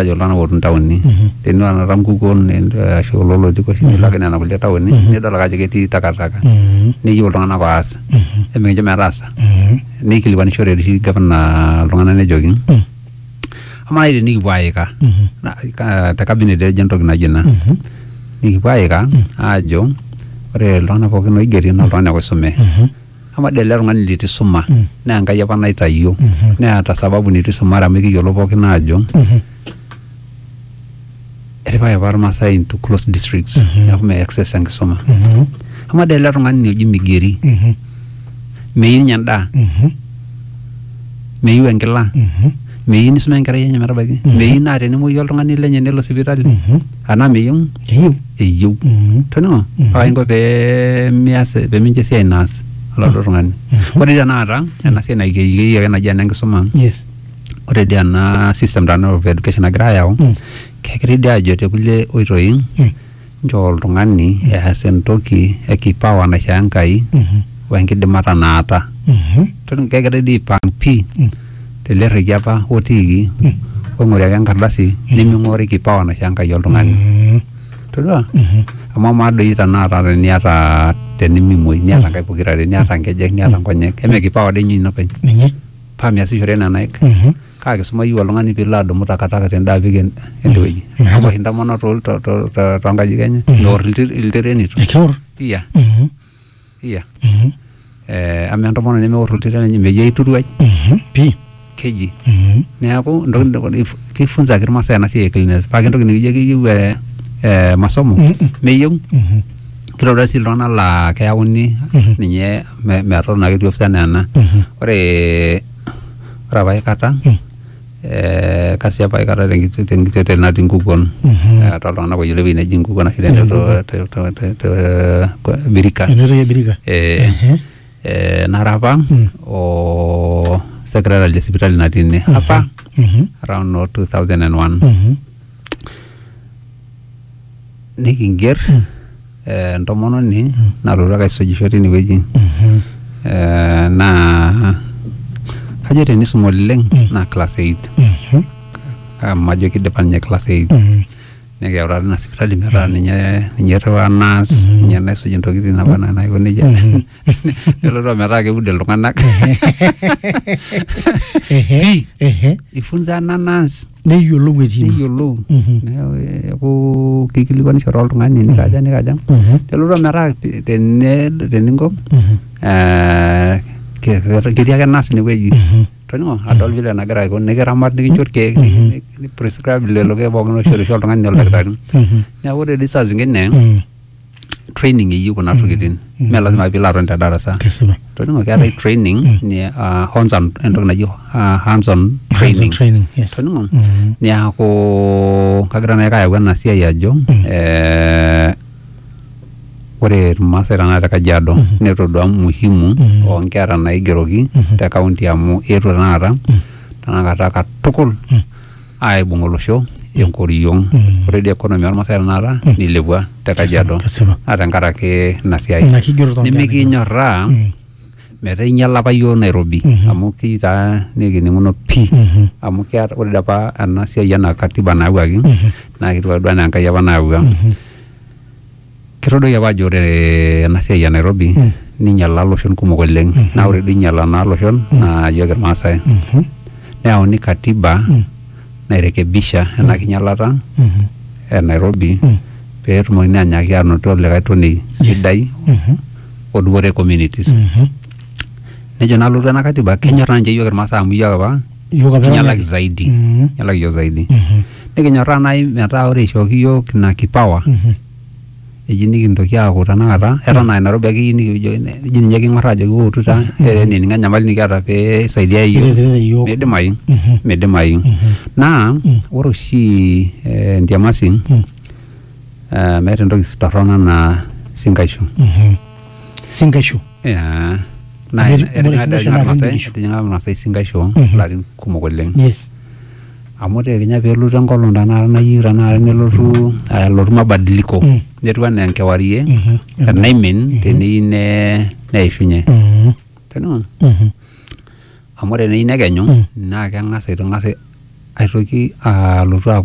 ajo iltung'anak ootii ntaoni tenilo enata nkukuo ne- ashu kulo lotiko oshi nilo ake nena kulie taoni nidol ake ajo ketii takataka neyieu iltung'anak oas emikincho metaasa neikilikuanishore oshi gavana iltung'anak nejoki amaa nai tenikipuo aika na- ka- te cabinet ejo entoki naijo ina nikipuo aika aajo ore iltung'anak pookin oigeri naa iltung'anak oisume Amaa dii ele tung'ani leitu isuma naa Enkai apa naitayio neeta sababu neitu isumare amu ekiyiolo pookin aajo etipikaki apa Irmaasai into closed districts neeku mee access enkisuma. Amaa dii ele tung'ani oji Migeri meyieu ninye endaa meyieu enkila meyieu nisuma enkerai enye metabaiki meyieu naa tenemuoyu oltung'ani lenye nelo sipitali. anaa meyieu eyieu eyieu Mhm. toning'o Mhm. paa kainko pee mias pee mincho esiai naas oladuo tung'ani ore dii tenakata ena siai naikeyieki ake naji ena enkisuma yes ore dii ena system tenakata of education nagira ayau Mm. kegirai dii ajo te kulie oitoi Mm. nchoo oltung'ani eas entoki e kipawa naishoo Enkai Mhm. wenkidimata naata Mhm. Toning'o, kegirai dii aipang pii Mm. tele rrekie apa otiiki oing'ori ake enkardasi neming'ori kipawa naishoo Enkai oltung'ani todua amu amaa doi tenakata teniata tenimimuoi niata nkaik pokirare niata nkejek niata nkonyek eme kipawa doi ninye ina openy ninye paa miasishore nena aik kaa kisuma iyieu oltung'ani piilo adumu takataka tende apik en- ende wueji amu ewosh intomonok tol- to- to- to- tonkajijik enye meorr ilti- iltirenito ekiorr iya Iya. Mhm. Eh, ama entomononi nemeor oltito lenye mejo aituruai Mhm. Pii. keji Mhm. neeku entoki nidol- if- kifunzaki irmaasai ena siai e cleanliness paa entoki nikijo keyieu eh, eh, masomo Mm-mm. meyieu Mhm. kitodua sii iltung'anak laa keyauni Mhm. ninye me- metotona ketii ofisi enaa ena Mhm. ore ore apa aikata Mm. eh, kasiap aikata tenkiti- tenkitiote natii nkukuon Eh, toltung'anak oyiolo ewueji neji nkukuon ashu tenchoto te- te- te- te- kwa- birika Enetoki ebirika. Eh, Ehe. eh, nara apa o secretary le sipitali natii ine apa Mhm. around no 2001 Mhm. nikinger eh, entomononi nalotu ake aisujisho tinewueji Eh, naa kajo tenisum oleng naa class 8 amu ajo kidipa ninye class 8 nikiutaa tina sipitali metaa ninye ninye irriwaa nas ninye naisuj intokitin naba enaa naiko nejia nelotu ometaa keud iltung'anak Ehe, ehe. ifunza ena nas neyiolou etii ine. neyiolou Mhm. neeku kikilikuanisho toltung'ani nikaja nikaja Mhm. nelotu ometaa pi- tene- teninko Mhm. eh, ke- ke- ketii ake nas inewueji Mhm. toning'o adol vile nagira aiko nikiramat nikincho irkeek ni- ni- prescribe lelo keek pookin oishorisho oltung'ani oldakitari Mhm. neeku ore dii saa zingine Mhm. training eyieu kuna tokitin mme lazima piilo aton te darasa kesipa toningo keetae training ni ah, hands on entoki naji ah, hands on training training yes toningo Mm. niaku kagira naake ayau ena siai ajo eh, ore irmaasai tenakata te kajiado netodua muhimu oonkera naigeroki te kaunti amu eetuo tenakata tenakata katukul aibung olosho enkoriong Mm. ore dii economy ormasae tenakata Mm. nilepua te kajiado Kesipa. naa tenkaraki ina siai Ina kigero too nkera nimikinyorraa Mm. metaa inyiala apa yioo Nairobi Mhm. amu kii taa nikininguno pii Mhm. amu keeta ore dii apa ena siai ena katiba nayawuaki Mhm. naa ketiu ake duo enaa Enkai apa nayawua Mhm. Kitodoi apa ajo ore ena siai e Nairobi ninyala loshon kumok oleng naa ore duo inyala naa loshon naa iyiok Irmaasai. Neyauni katiba nairekebisha ena kinyalata e Nairobi pee etumokini anyaaki aanoto likae tonei sidai odupore communities. Nejo naa alotu ena katiba kenyorr naa ninche iyiok Irmaasai amu iyiok apa Iyiok apa kinyalaki eranyaki. zaidi Mhm. kinyalaki iyiok zaidi Mhm. nikinyorraa naaji metaa ore ishooki iyiok ina kipawa Mhm. eji nikintoki aaku tanakata eton aa Nairobi ake iyieu nikijo eji ninye king'orraa ajoki wootu taa eh, enining'o enyamali nikiata pee isaidia iyiok Niretirete iyiok. midimayu Mhm. midimayu Mhm. naa Mm. ore oshi eh, entiamasi Mm. eh, meeta entoki torrono anaa sinkaishu Mhm. Sinkaishu. Yeah. Naa Ore- ore etijing'a doi kingaisho naa Irmaasai- kindirisho. etijing'a Irmaasai sinkaisho Mhm. larin kumok oleng yes amu ore kenya peelotu enkolong tanakata nayieu tanakata nelotu ah, elotu mabadiliko Mm. netiu anaa enkewarie Mhm. enaimin teneyieu ne- neishunye Mhm. Teniun. Mhm. amu ore teneyieu nekenyu Mm. naa keng'as aitong'as aitoki alotu aaku